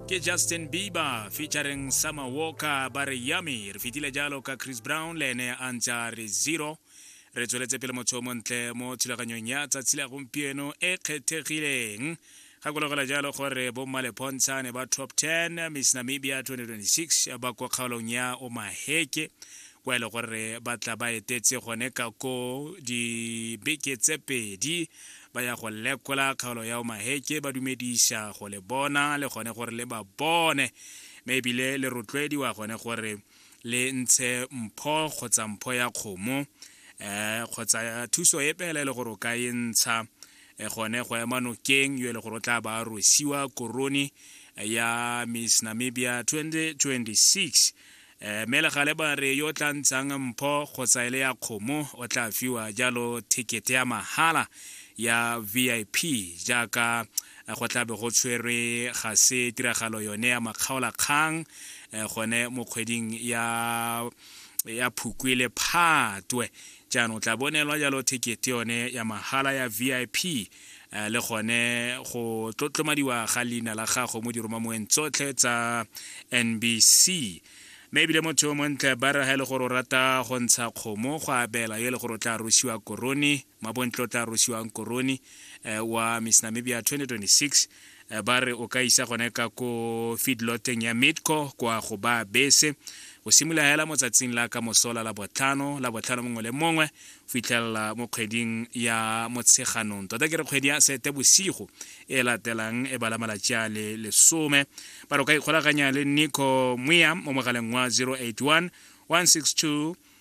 ke justin bieber featuring summer walker ba re yummy re fetile jalo ka chris brown le ene a ntse a re zero re tsweletse pele motho o montle mo thulaganyong ya tsatsi la gompieno e kgethegileng gakologela jalo gore bommalepontshane ba top 10 miss namibia 2026 ba kwa kgaolong ya omaheke kwa e le gore ba tla ba etetse gone ka koo dibeke tse pedi ba ya go lekola kgaolo ya omaheke ba dumediša go le bona le gone gore le ba bone mme ebile le rotloediwa gone gore le ntshe mpho kgotsa mpho ya kgomo um kgotsa thuso e pele e le gore o ka e ntsha e gone go ema nokeng yo e le gore o tla ba rosiwa korone ya miss namibia 2026 Eh, mme legale ba re yo o tla ntshang mpho kgotsa e le ya kgomo o tla fiwa jalo thekete ya mahala ya vip jaaka eh, go tlabe go tshwerwe ga se tiragalo yone ya makgaolakgang eh, gone mo kgweding ya ya phukwe le phatwe jaanong tla bonelwa jalo thekete yone ya mahala ya vip Eh, le gone go tlotlomadiwa ga leina la gago mo diromamoeng tsotlhe tsa nbc mme ebile motho yo montle ba re ga e le gore o rata go ntsha kgomo go abela yo e le gore o tla rosiwa korone mabontle o tla rosiwang korone eh, wa miss namibia 2026 Eh, ba re o ka isa gone ka ko feedloteng ya midco kwa go ba bese go simolola hela mo tsatsing la ka mosola la botlhano la botlhano mongwe le mongwe fitlhelela mo kgweding ya motsheganong tota ke re kgwedi ya sete bosigo e latelang e bala malatsi a le lesome ba re o ka ikgolaganya le nico moya mo mogaleng wa 081 162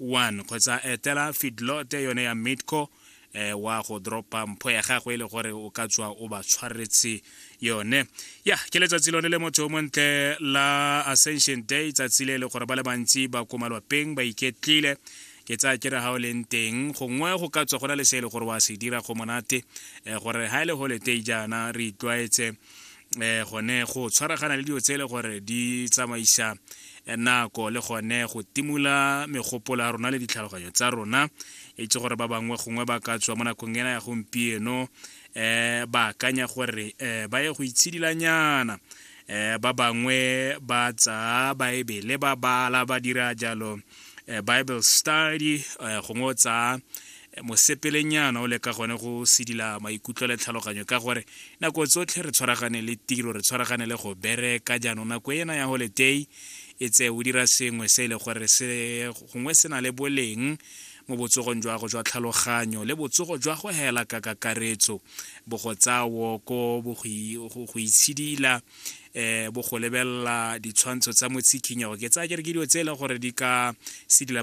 1 kgotsa etela fidlote yone ya midco eh, wa go dropa mpho ya gagwe e le gore o ka tswa o ba tshwaretse yone ya ke letsatsi lone le motho o montle la ascension day tsatsi le e le gore ba le bantsi ba ko malwapeng ba iketlile ke tsaya ke re ga o leng teng gongwe go ka tswa go na le se e le gore wa se dira go monate eh, gore ga e le holiday jaana re itlwaetse eh gone go tshwaragana le dilo tse e le gore di tsamaisa eh, nako le gone go timola megopolo ya rona le ditlhaloganyo tsa rona e itse gore ba bangwe gongwe ba ka tswa mo nakong ena ya gompieno um ba akanya gore um ba ye go itshedilanyana um ba bangwe ba tsaa baebele ba bala ba dira jalo um bible study um gongwe o tsaa mosepelenyana o leka gone go sedila maikutlo le tlhaloganyo ka gore nako tsotlhe re tshwaragane le tiro re tshwaragane le go bereka jaanong nako ena ya holiday e tse o dira sengwe se e le gore se gongwe se na le boleng mo botsogong jwa go jwa tlhaloganyo le botsogo jwa go hela ka kakaretso bo go tsaya woko bo go itshidila um bo go lebelela ditshwantsho tsa motsikhinyego ke tsaya ke re ke dilo tse e leng gore di ka sedila